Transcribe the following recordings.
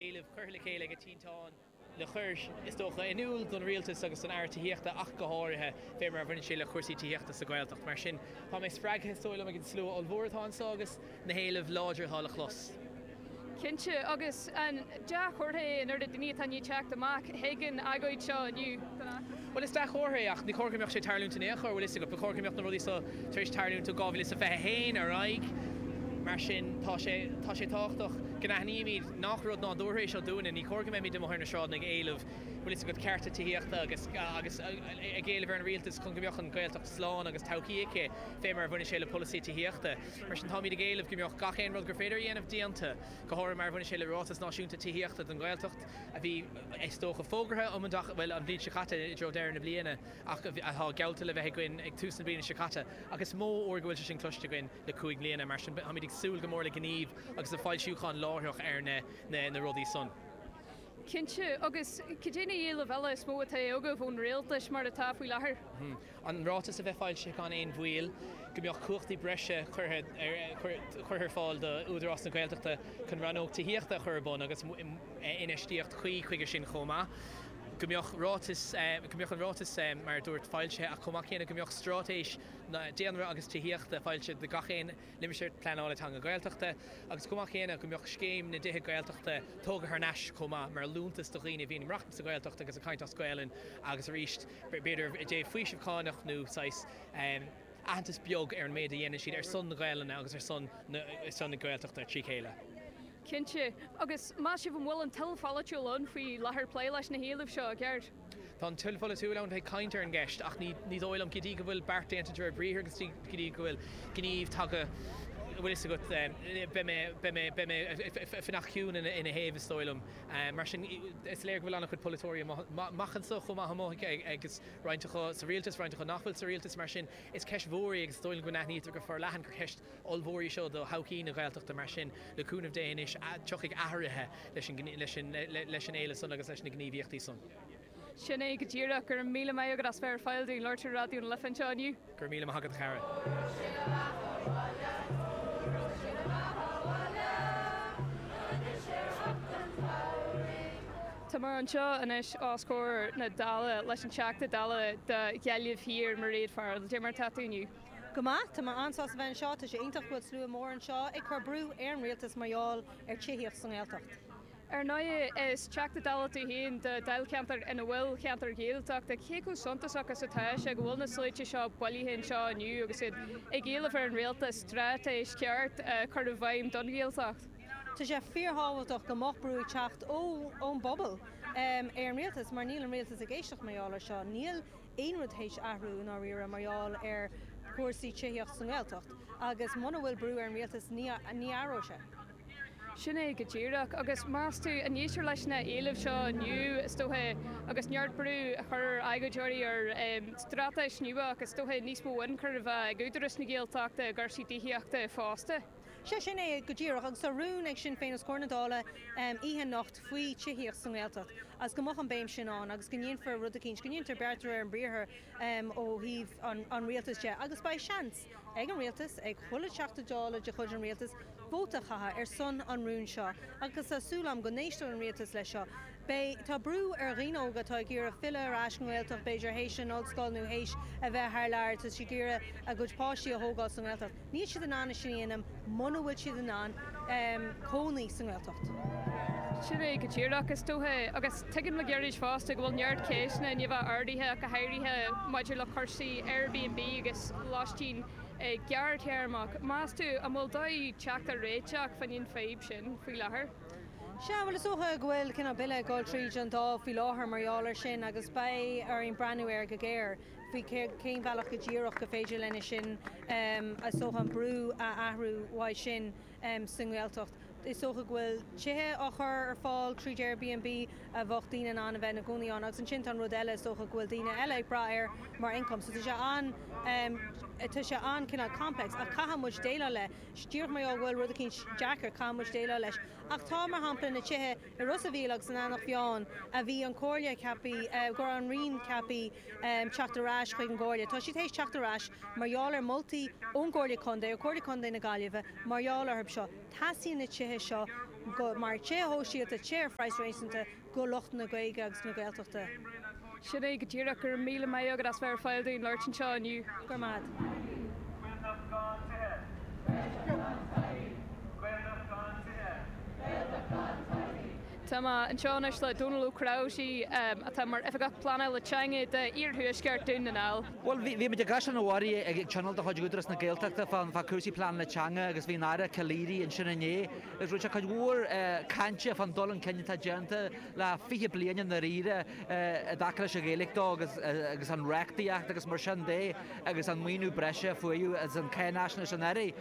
Éilimh curtha le chéile ag Tinteán le cur, is dócha, in iúl don Rialtas agus don Aire Tithíochta ach go háirithe fé mar a bhaineann sé le cúrsaí tithíochta sa Ghaeltacht. Mar sin tá mé spreagtha, is dóigh liom, ag an slua ollmhór atá annso agus na héilimh láidir atá le clos. Cinnte, agus an dea-chomhartha é an oiread daoine atá i ndiaidh teacht amach, thuig an agóid seo inniu don fheachtas. Bhuel, is dea-chomhartha é, ach ní cóir go mbeadh sé ag tarlúint in aon chor, bhfuil 'fhios agat. Ba chóir go mbeadh na rudaí so tar éis tarlúint ó 2021 ar aghaidh. Mar sin, tá sé, tá sé tábhachtach go n-aithnímíd nách rud nádúrtha é seo dúinne. Ní cóir go mbeimís amuigh ar na sráideanna ag éileamh, bhfuil 'fhios agat, cearta tithíochta agus, agus ag éileamh ar an Rialtas chun go mbeadh an Ghaeltacht slán agus todhchaí aici, fé mar a bhaineann sé le polasaí tithíochta. Mar sin, táimíd ag éileamh go mbeadh gach aon rud gur féidir a dhéanamh déanta, go háirithe mar a bhaineann sé le Ráiteas Náisiúnta Tithíochta don Ghaeltacht. a bhí, is dócha, fógartha um an, bhuel, an bhliain seo caite, i dtreo deireadh na bliana, ach atá geallta le bheith againn ag tús na bliana seo caite. Ach is mó uair go bhfuil sé sin cloiste againn le cúig mbliana, mar sin táimid ag súil go mór le gníomh agus le foilseachán láithreach ar na rudaí san. Cinnte. Agus cad é na héilimh eile is mó atá agaibh ón Rialtas, mar atá, faoi láthair? an ráiteas a bheith foilsithe gan aon mhoill, go mbeadh cumhachtaí breise curtha ar fáil do Údarás na Gaeltachta chun rannóg tithíochta a chur ar bun agus infheistíocht chuí chuige sin chomh maith, go mbeadh ráiteas, go mbeadh an ráiteas mar a dúirt foilsithe ach chomh maith céanna go mbeadh straitéis daonra agus tithíochta foilsithe do gach aon limistéar pleanála teanga Gaeltachta agus chomh maith céanna go mbeadh scéim na dtithe Gaeltachta tógtha thar n-ais chomh maith mar liúntas do dhaoine a bhíonn ag maireachtaint sa Ghaeltacht agus ag caint as Gaolainn agus arís b'fhéidir i dtaobh faoiseamh cánach nó saghas aitheantas beag ar an méid a dhéanann siad ar son na Gaelainne agus ar son na Gaeltachta trí chéile. Cinnte. Agus meas sibh an bhfuil an toil pholaitiúil ann faoi láthair le plé leis na héilimh seo i gceart? Tá an toil pholaitiúil ann ag caint ar an gceist ach ní dóigh liom, go dtí go bhfuil beart déanta de réir briathair agus go dtí go bhfuil gníomh tagtha, bhfuil fhios agat, beidh mé ag fanacht ciúin ina thaobh is dóigh liom. Mar sin, is léir go bhfuil an-chuid polaiteoirí amach anso chomh maith amuigh agus roinnt acu sa rialtas, roinnt acu nach bhfuil sa rialtas. Mar sin, is ceist mhór í agus is dóigh liom go n-aithnítear go forleathan gur ceist ollmhór í seo do thodhchaí na Gaeltachta. Mar sin, le cúnamh Dé anois, tiocfaidh athruithe leis an éileamh san agus leis na gníomhaíochtaí san. Sin é go díreach. Go raibh míle maith agat as bheith ag labhairt linn ar Raidió na Life anseo inniu. Go raibh míle maith agat, a chara. Táimid anseo anois os comhair na Dála leis an Teachta Dála do Ghaillimh Thiar, Mairéad Farrell. Cad é mar atá tú inniu? Go maith. Tá mé an-sásta bheith anseo. Tá sé iontach go bhfuil slua mór anseo ag cur brú ar an Rialtas mar gheall ar tithíocht sa nGaeltacht. Ar ndóigh, is Teachta Dála tú féin do Dháilcheantar ina bhfuil ceantair Ghaeltachta. Cé chomh suntasach is atá sé go bhfuil na sluaite seo bailithe anseo inniu agus iad ag éileamh ar an Rialtas straitéis cheart a chur i bhfeidhm don Ghaeltacht? Tá sé fíorthábhachtach go mbeadh brú ag teacht ón bpobal ar an Rialtas mar níl an Rialtas ag éisteacht mar gheall air seo. Níl aon rud théis athrú i ndáiríre mar gheall ar chúrsaí tithíochta sa nGaeltacht agus muna bhfuil brú ar an Rialtas ní athróidh sé. Sin é go díreach. Agus meas tú an éistfear leis na h-éilimh seo inniu, is dócha, agus neart brú á chur ag agóideoirí ar straitéis nua agus is dócha níos mó ionchuir a bheith ag Údaras na Gaeltachta i gcúrsaí tithíochta fosta? Sea, sin é go díreach. Agus tá rún ag Sinn Féin os comhair na Dála oíche anocht faoi tithíocht sa nGaeltacht agus go mbeadh an béim sin ann agus go ndéanfar rud eicínt, go ndéantar beart de réir an briathar ó thaobh an Rialtais de agus beidh seans. ag an Rialtas, ag chuile Teachta Dála de chuid an Rialtais, vóta a chaitheamh ar son an rúin seo agus tá súil agam go n-éisteoidh an Rialtas leis seo. Beidh, tá brú ar dhaoine óga atá ag iarraidh filleadh ar ais don nGaeltacht b'fhéidir théis an Ollscoil nó théis a bheith thar lear, tá siad ag iarraidh a gcuid páistí a thógáil sa nGaeltacht. Níl siad in ann é sin a dhéanamh. muna bhfuil siad in ann cónaí sa nGaeltacht. Sin é go díreach, is dócha. Agus tuigim le gairid fosta go bhfuil neart ceisteanna i ndiaidh a bheith ardaithe ach go háirithe maidir le cúrsaí Airbnb agus loistín gearrthéarmach. Meas tú an bhfuil dóigh teacht ar réiteach fá choinne an fadhb sin faoi láthair? Sea, bhuel is dócha go bhfuil cineál bille ag dul tríd an Dáil faoi láthair mar gheall ar sin agus beidh orainn breathnú air go géar. faoi cén bhealach go díreach go féidir lena sin is dócha an brú a athrú uaidh sin sa nGaeltacht. Is dócha go bhfuil tithe á chur ar fáil tríd Airbnb a bheadh daoine in ann a bheith ina gcónaí ann agus ansin tá an rud eile is dócha go bhfuil daoine eile ag brath air mar income. So tá sé an tá sé an cineál complex ach caithfidh muid déileáil leis. Díreach mar gheall go bhfuil rud eicínt deacair caithfidh muid déileáil leis. Ach tá mar shampla na tithe i Ros a' Mhíl agus in Eanach Mheáin a bhí an comhairle ceaptha go raibh an roinn ceaptha teacht ar ais chuig an gComhairle. Tá siad théis teacht ar ais mar gheall ar mholtaí ón gComhairle Contae, ó Chomhairle Contae na Gaillimhe mar gheall orthu. Seo, teastaíonn na tithe seo go, mar tithe shóisialta, tithe ar phraghas réasúnta, go lucht na Gaeilge agus na Gaeltachta. Sin é, go díreach. Go raibh míle maith agat as bheith ar fail dúinn labhairt anseo inniu. Grma. Gael nach gan tithe. Gaeltacht gan tithe. Gael nach gan tithe. Gaeltacht gan tithe. Tá mé anseo anois le Dónall Ó Cnáimhsí atá mar Oifigeach Pleanála Teanga do Iarthuaisceart Dún na nGall. Bhuel, bhí muid i gCaisleán an Bharraigh ag tionól de chuid Údaras na Gaeltachta fá chúrsaí pleanála teanga agus bhí an Aire Calleary ansin inné agus rinne sé cuid mhór cainte fán dul chun cinn atá déanta le fiche bliain i ndáiríre i dtaca leis an Ghaeilge dó agus an reachtaíocht agus mar sin de agus an maoiniú breise a faomhadh as an Cháinfhaisnéis anuraidh.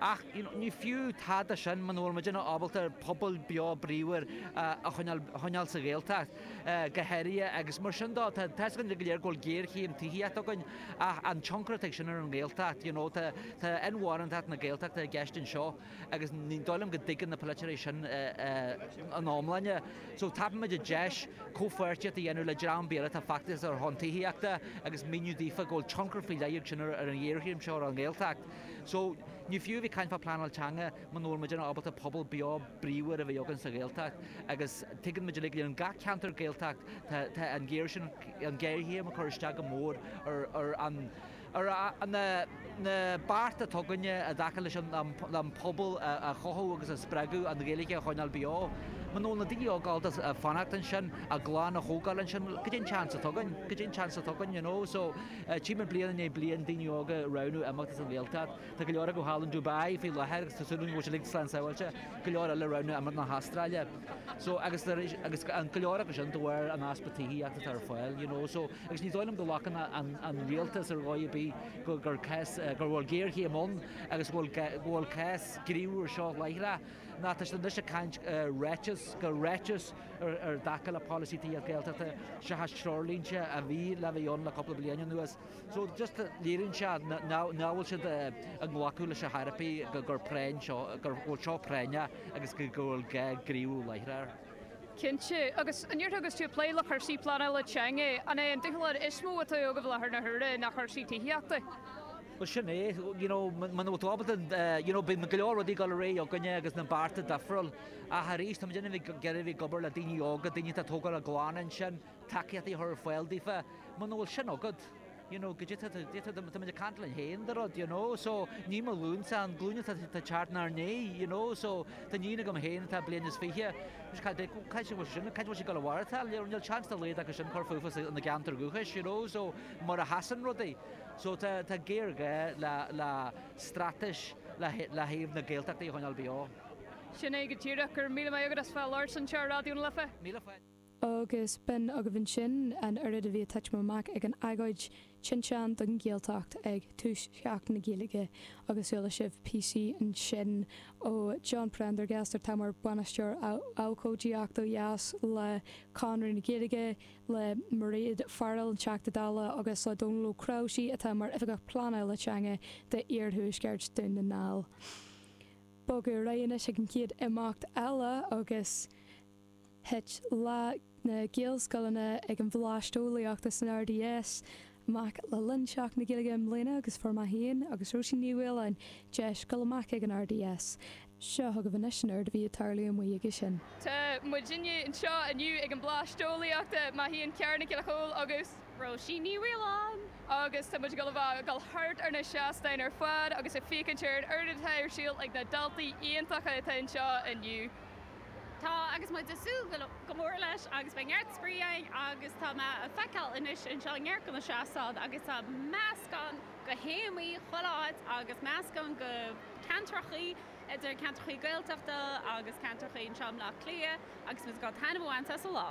Ach ní fiú tada sin muna bhfuilimid ábalta pobal beo bríomhar a choinneáil sa Ghaeltacht go háirithe agus mar sin dó tá fhios againn go léir go bhfuil géarchéim tithíochta againn ach an tionchar atá ag sin ar an Ghaeltacht you know tá inmharthantacht na Gaeltachta i gceist anseo agus ní dóigh liom go dtuigeann na polaiteoirí sin ina iomláine so tapaimid an deis comhpháirtíocht a dhéanamh le dream beag atá ag feachtasaíocht ar son tithíochta agus míniú daofa go bhfuil tionchar faoi leith ag an ghéarchéim seo ar an nGaeltacht. So, ní fiú a bheith ag caint fá phleanáil teanga muna bhfuil muidinne ábalta pobal beo bríomhar a bheith againn sa Ghaeltacht agus tuigeann muid uilig in gach ceantar Gaeltacht tá an géar sin an géarchéim ag cur isteach go mór ar an ar na bearta atá againne i dtaca leis an an pobal a chothú agus a spreagadh an Ghaeilge a choinneáil beo. Muna bhfuil na daoine óga ábalta fanacht ansin a gclann a thógáil ansin, cad é an seans atá againn cad é an seans atá againn you know so, Tchí mé bliain i ndiaidh bliain daoine óga ag roghnú imeacht as an Ghaeltacht. Tá go leor acu thall in Dubai faoi láthair agus tá súil agam go bhfuil siad uilig slán sabháilte. Go leor eile ag roghnú imeacht na hAstráile. So, agus arís, agus go leor acu sin de bharr an easpa tithíochta atá ar fáil, you know. So, agus ní dóigh liom go nglacann an Rialtas ar dhóigh ar bith go, gur cás, go bhfuil géarchéim ann agus go bhfuil, go bhfuil gá gníomhú air seo láithreach. Nó tá siad anois ag caint ar ráiteas, gur ráiteas, i dtaca le polasaí tithíochta Gaeltachta seachas treoirlínte a bhí le bheith ann le cúpla bliain anuas. So just léiríonn sé nach bhfuil siad ag glacadh leis ar dhóigh ar bith gur práinn seo, go bhfuil seo práinneach agus go bhfuil gá gníomhú láithreach. Cinnte. Agus an ndéarfá agus tú ag plé le cúrsaí pleanála teanga, an é an dúshlán is mó atá agaibh i láthair na huaire ná cursaí tithíochta? Bhuel sin é, you know, muna bhfuil tú ábalta, you know, bíonn go leor rudaí ag dul ar aghaidh againne sna bearta difriúil. Ach arís, tá muid in inmhe ag iarraidh bheith ag obair le daoine óga, daoine atá ag tógáil a gclann ansin, tacaíochtaí a chur ar fáil daofa. Muna bhfuil sin agat, you know, go dtitfidh tú, dtitfidh tú, tá muid ag caint linn féin dáiríre, you know, so ní mo ghlúinse, an glúin atá ag teacht 'nár ndiaidh, you know, so tá iníon agam féin atá bliain is fiche, anois cad é, cá bhfuil sí sin, cá bhfuil sí ag dul a mhaireachtáil, you know, níl seans dá laghad acu sin cur fúthu sa, ina gceantar dúchais, you know, so mar a sheasann rudaí. So tá, tá géarghá le, le straitéis le, ó thaobh na Gaeltachtaí a choinneáil beo. Sin é go díreach. Go raibh míle maith agat as bheith ag labhairt anseo ar Raidió na Life. Míle fáilte. Agus b'in agaibh ansin an oiread a bhí ag tuitim amach ag an agóid Tinteán don Ghaeltacht ag tús Sheachtain na Gaeilge agus chuala sibh píosaí ansin ó John Prendergast atá mar Bhainisteoir Abhcóideachta ó dheas le Conradh na Gaeilge, le Mairéad Farrell, an Teachta Dála agus le Dónall Ó Cnáimhsí atá mar Oifigeach Pleanála Teanga d'iarthuaisceart Dhún na nGall. Bogadh ar aghaidh anois ag an chéad imeacht eile agus thit Lá na Gaelscoileanna ag an Bhleaist Eolaíochta san RDS amach le linn Seachtain na Gaeilge i mbliana agus fuair mé féin agus Róisín Ní Mhaoláin deis dul amach ag an RDS. Seo chugaibh anois an rud a bhí ag tarlú amuigh aige sin. Tá muidinne anseo inniu ag an Bhleaist Eolaíochta. Mé féin Ciara Nic Giolla Chomhaill agus. Róisín Ní Mhaoláin. Agus tá muid ag dul a bheith ag dul thart ar na seastáin ar fad agus ag féachaint ar an oiread atá ar siúl ag na daltaí iontacha atá anseo inniu. Tá agus muid ag súil go mór leis agus beidh neart spraoi againn agus tá mé ag feiceáil anois anseo neart de na seastáin agus tá meascán de théamaí chuile áit agus meascán de cheantrachaí idir ceantrachaí Gaeltachta agus ceantrachaí anseo i mBleá Cliath agus muid ag dul taitneamh a bhaint as an lá.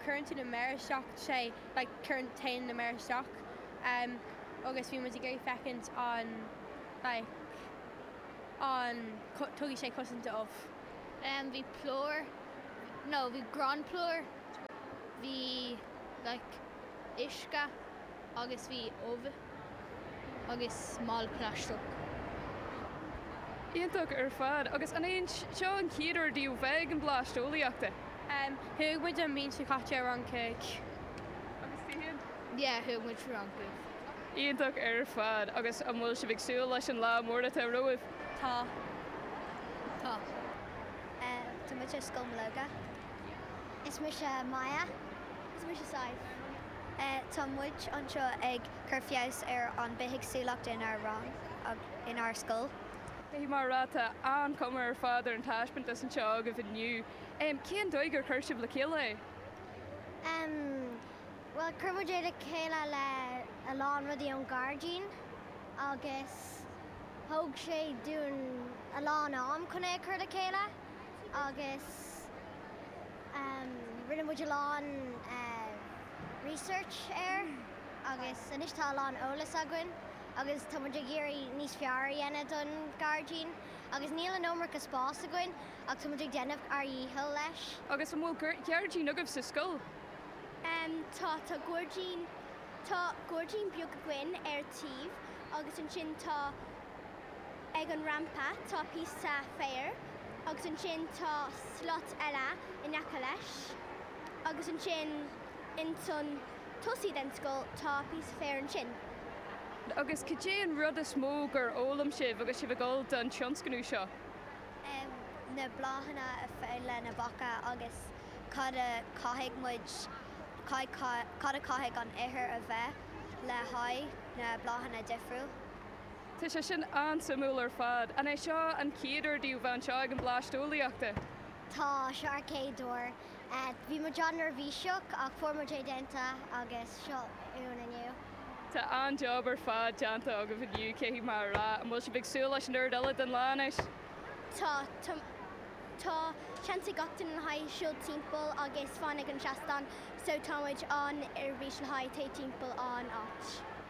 cuireann tú na méara isteach, sé, like cuireann téann na méara isteach em agus bhí muid ag iarraidh feicint an like an cu tugadh sé cosaint do ubh. Em bhí plúr no bhí gránphlúr bhí like uisce agus bhí ubh. agus mála plaisteach. Iontach ar fad. Agus an é seo an chéad uair daoibh bheith ag an Bhlast Eolaíochta? Thug muid an bhliain seo caite ar an Church. Agus tú féin? Yeah, thug muid ar an Church. Iontach ar fad. Agus an bhfuil sibh ag súil leis an lá mór atá romhaibh? Tá. Tá. Tá muid ar Scoil Mológa. Is mise Maya. Is mise Sadhbh. Tá muid anseo ag cur feabhas ar an mbithéagsúlacht inár rang agus inár scoil. Faoi mar atá, tá an-chuma ar fad ar an taispeántas anseo agaibh inniu. Cén doigh ar chur sibh le chéile é? Bhuel, chur muid é le chéile le a lán rudaí ón ghairdín agus thóg sé dúinn a lán am chun é a chur le chéile agus. Rinne muid a lán research air agus anois tá a lán eolas againn agus tá muid ag iarraidh níos fearr a dhéanamh don gairdín agus níl an iomarca spás againn ach tá muid ag déanamh ár dhícheall leis. Agus an bhfuil gairdín agaibh sa scoil? Tá, tá gairdín, tá gairdín beag againn ar taobh agus ansin tá Ag an rampa tá píosa féir agus ansin tá slat eile in aice leis agus ansin ins an tosaí den scoil tá píosa féir ansin. Agus cad é an rud is mó gur fhoghlaim sibh agus sibh ag dul don tionscnamh seo? Na bláthanna is fearr le na beacha agus cad a chaithfidh muid, cad a chaithfidh an ithir a bheith le haghaidh na bláthanna difriúil. Tá sé sin an-suimiúil ar fad. An é seo an chéad uair daoibh bheith anseo ag an Bhleaist Eolaíochta? Tá, seo ár gcéad uair. Bhí muid an-neirbhíseach ach fuair muid é déanta agus seo muid inniu. Tá an-job ar fad déanta agaibh inniu, caithfidh mé a rá. An bhfuil sibh ag súil leis an chuid eile den lá anois? Tá, tá. Tá seans ag gach duine le haghaidh siúl timpeall agus fan ag an seastán so tá muid an-ar bís le haghaidh téigh timpeall an áit.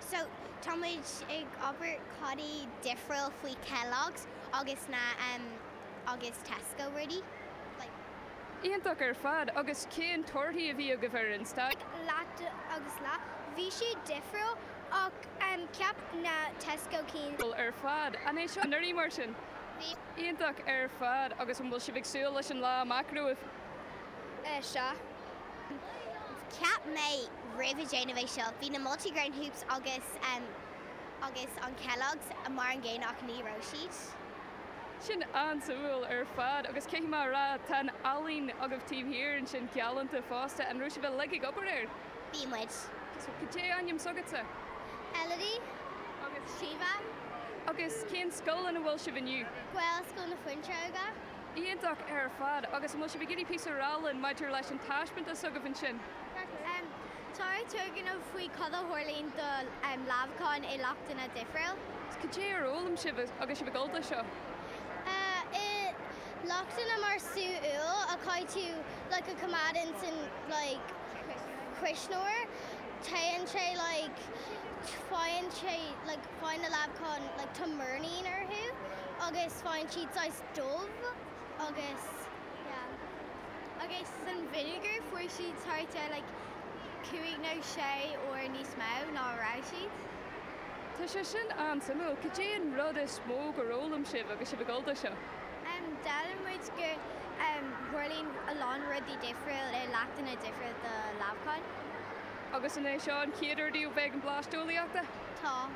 So, táimid ag obair cad é difriúil faoi Kellogg's agus na em agus Tesco rudaí like. Iontach ar fad, agus cén torthaí a bhí agaibh ar an sta. Leat agus la. Bhí siad difriúil ach em cheap na Tesco cinn. Cool ar fad. An raibh sibh anseo anuraidh mar sin? Bhí. Iontach ar fad, agus an bhfuil sibh ag súil leis an lá amach romhaibh? Eh, sea. Cheap mé roimh ag déanamh é seo, bhí na multi grain hoops agus agus an Kellogg's mar an gcéanna ach ní raibh siad. Sin an-suimiúil ar fad. Agus caithfidh mé a rá, tá an ealaín agaibh taobh thiar ansin galánta fosta. An raibh sibh uilig ag obair air? Bhí muid. Cad é ainm s'agatsa? Elodie agus Síomha. Agus cén scoil ina bhfuil sibh inniu? Gaelscoil na Fuinseoige. Iontach ar fad. Agus an bhfuil sibh ag iarraidh píosa a rá linn maidir leis an taispeantas s'agaibh ansin? Tá ár dturgnamh faoi cad a tharlaíonn do leamhacháin i leachtanna difriúla. Cad é a d'fhoghlaim sibh agus sibh ag dul do seo? I leachtanna mar sú úll a chaithfidh tú like a choimeád ins an like cuisneoir téann sé like faigheann sé like faigheann na leamhacháin like tá múscán orthu agus faigheann siad saghas dubh agus yeah agus san vinegar fuair siad thart ar like cúig nó sé uair níos mó ná a raibh siad. Tá sé sin an-suimiúil. Cad é an rud is mó gur fhoghlaim sibh agus sibh ag dul do seo? Em d'fhoghlaim muid gur em tharlaíonn a lán rudaí difriúil ar leachtanna difriúil do leamhacháin. Agus an é seo an chéad uair daoibh bheith ag an Bhleaist Eolaíochta? Tá.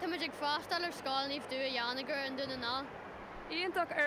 Tá muid ag freastal ar Scoil Naomh Dua Dheánaigh ar an Dún i nDá. Iontach ar